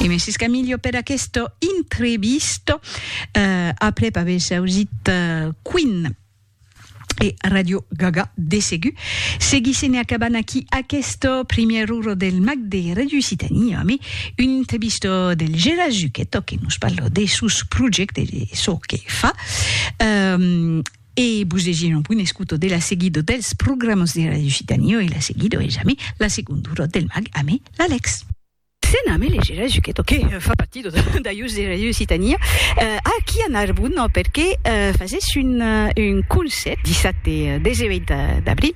E Messi Scamillo per aquesta entrevista. Uh, après haver sausit uh, Queen e Radio Gaga de segur. Seguissem e acabant aquí aquesta première hora del Mac de Radio Citania, mais une entrevista del Gérard Zucchetto que nous parle de sus projectes, de ce que fa. Um, E vos legir un punt escuto de la seguido dels programas de Radio Citanio e la seguido es amé la segundura del mag amé l'Alex. Sen amé leger a Zuchetto que fa partido d'ajus de Radio Citania aquí a Narbon perque fasés un un concert dissat e 18 d'abril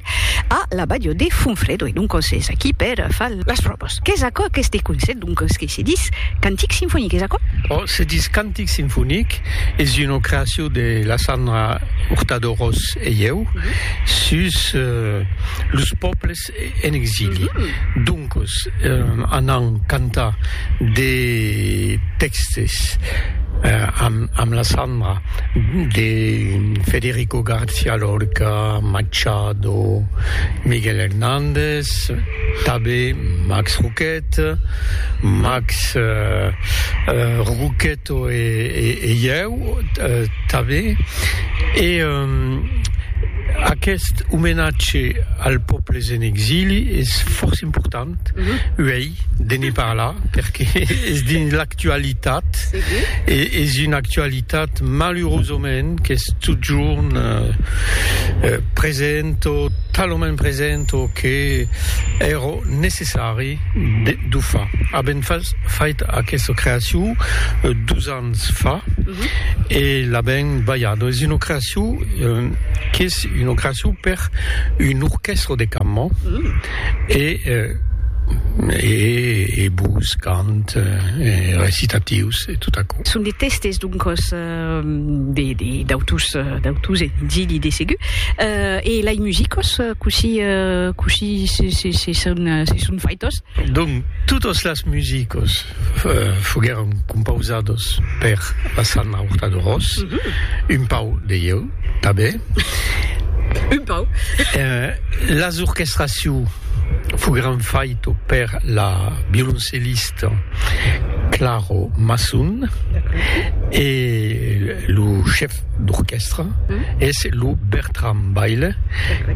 a la badio de Fonfredo e doncos es aquí per far las probas. Qu'es aquò aqueste concert doncos que se dis cantics sinfoniques aquò? Oh se dis can Cantic sinfonic es una creacion de la Sandra Hurtado Ros e ieu sus los pòbles en exili. Doncos anam cantar de tèxtes amb la Sandra de Federico García Lorca, Machado, Miguel Hernández, tanben Max Roquet. Eth Max Roqueto e ieu tanben, e aqueth omenatge als pòbles en exili es fòrça important uei de ne parlar, perque es dins l'actualitat, e es una actualitat malurosament qu'es totjorn present o talament present o que èra necessari. Marie Duffa a ben fait aquesta creacion dos ans fa e l'a ben balhada. Es una creacion qu'es una creacion per un orchestre de cambra e e bos cant e recitatius e tot aquò. Son de testes doncas. De d'autus d'autus e d'illi de segur. E lai musicos cossí cossí se son se son faitos? Donc totos las musicos foguèron compausados per la Sanna Hurtado Ros, un pauc de ieu tanben. Un pauc. Las orchestracions foguèron faitos per la violoncellista, Claro Masson e lo chef d'orquèstra es lo Bertram Baile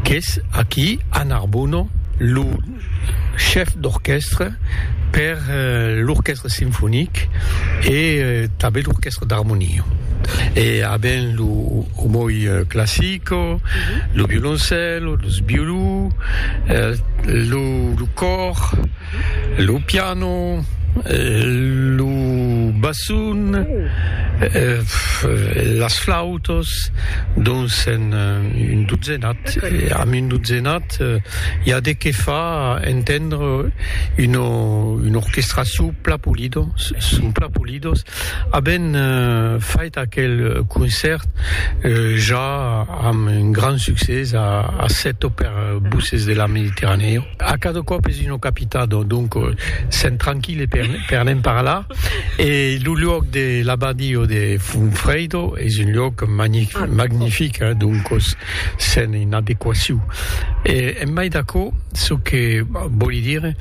qu'es aquí a Narbona lo chef d'orquèstra per l'orquèstra sinfonic e tanben l'orquèstra d'armonia e a ben lo omoi classico, lo violoncèlo, los violons, lo còr. Lo piano, lo basson, las flautas, dons en un dotzenat, amb un dotzenat i a de qué fa entendre una una orquestra çò plan polida, son plan polidas, aben fait aquel concèrt ja amb un grand succès a Sèt o per Bosses de la Mediterranèa. A cada còp es una capitado, donc sèm tranquille per ne'n parlar e lo luòc de l'abadio de Funfredo es un luòc magnific, donc sèm en adequacion e en mai d'aquò çò que vòli dire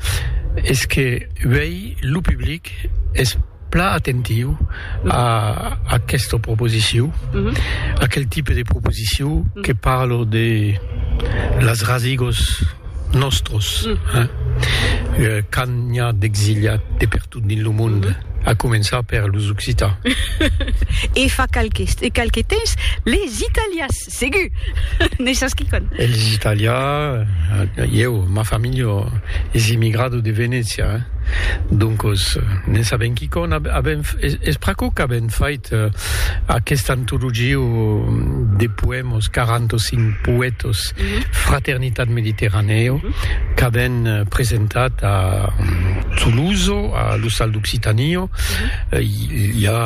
es que uèi lo public es Plan atentiu a aquesta proposiciu, aquel tipe de proposiciu que parlo de las rasigos nòstros, quand n'i a d'exiliats de pertot dins lo monde, a començar per los occitans. E fa qualques temps, les italians. Segur! ne sas quicòm. Elis italià, ieu, ma familha es immigrado de Venècia, doncos ne sabem quicòm. Avem, es pr'aquò qu'avem fait aquesta antologia de poèmas, 45 poètas, Fraternitat Mediterranèo, qu'avem presentat a Toulouse, a l'Ostal d'Occitània, ja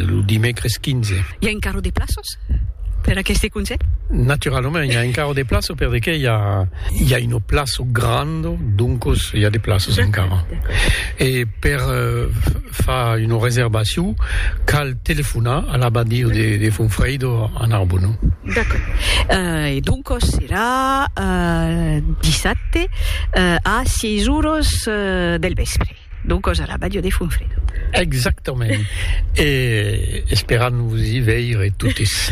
lo dimècres 15. I a encara de plaças? per aqueste conselh? Naturalament, i a encara de plaço per de que i a, i a una plaço grand, doncos i a de plaços encara. E per uh, far una reservacion, cal telefonar a l'abadio de, de Fonfreido a Narbonne. D'accord. Uh, e doncos serà uh, dissabte uh, a 6 horas uh, del vespre. Donc cosa la Badio de Funfredo. Exactament. e esperam vos i veire totes.